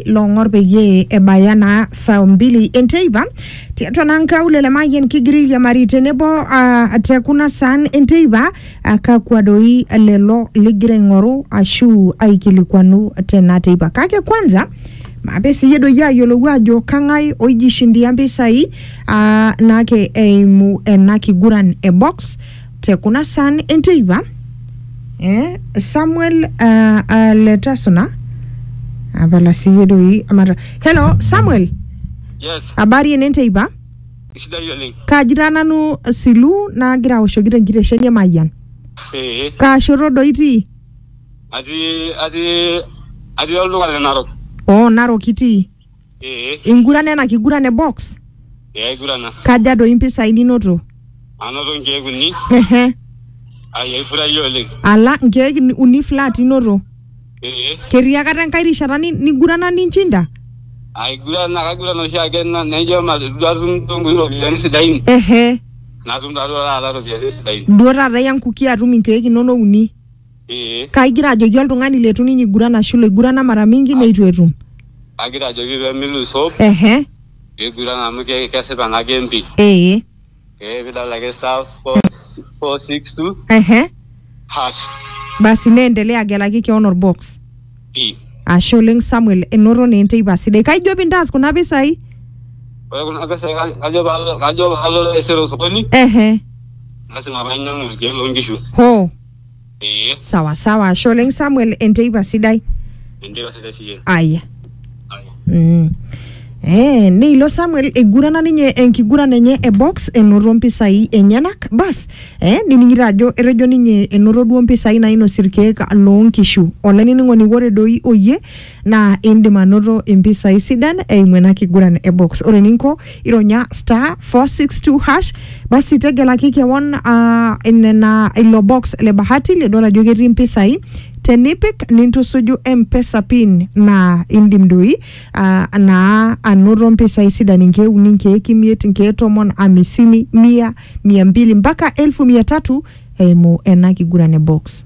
long'or peyie ebaya naa saa mbili enteipa tiatua naa nkaulele mayian kigira airiamari tenebo uh, te kuna saan enteipa uh, kakwa doi lelo ligira aing'oru ashu aikilikuanu tena teipa kake kwanza mape siyie doi ayiolou ajo kang'ae oijishindia mpisai uh, naake eimu ena kiguran e box te kuna saan enteipa eh, samuel uh, uh, letasona apala siye doi amata hello samuel Yes, habari ene nteipa isidai oleng. kaaji taa nanu silu naagira aoshoki tenkitesheni emayian Ee, kaashoto doi itii atii atii atii olduka le Narok. oo narok itii Ee, Ingurana ena kiguran e box? ee aigurana. Kaja doi mpisai ninoto? Anoto nkeek uni, Ehe. ai aifurahia oleng. Ala nkeek ni- uni flat inoto. Ee, Ketii akata enkae rishata ni- nigurana ninchinda? aigurana kaigurana oshiake na- naijo ma- duo atum duo nkuti ropiyiani sidain. Ehe. Natum taa duo taata ropiyiani sidain. Duo taata iya nkuki atum inkeek inono uni. ee Kaigira ajoki oltung'ani leitu ninye iguran ashu loigurana mara mingi neitu etum. agira ajoki pee milus hope Ehe. niguran amu ke- kesipa ena game pi Ee. ee pidol ake star four s- four six two Ehe. hash Basi neendelea agelaki keon olbox. pi Ashe oleng Samuel, enoto naa enteipa sidai. Kaijo pintaas kuna pisai? ore kuna pesai ka- kajo paalo kajo paalo taisere osokoni Ehe. lasima painyiang'u irkeek loonkishu Hoo. ee sawa sawa ashe oleng samuel enteipa sidai endipa sidai siye aya Aya. Mm. Eh, neilo Samuel eigurana ninye enkiguran enye e box enoto mpisai enyenak bas eh, nining'ito ajo etejo ninye enoto duo mpisai nainosie irkeek loonkishu olainining'oni ore doi oyie naa indim anoto impisai sidan eimu ena kiguran e box ore eninko ironya star 462 hash basi tegelaki kewon ah, nena ilo box le bahati lidol ajo ketii impisai tenipik nintusuju mpesa pin naa indim doi ah, naa anoto mpisai sidan inkeek uni inkeek imiet inkeek tomon amisini mia mia mbili mpaka elfu mia tatu eimu ena kiguran e box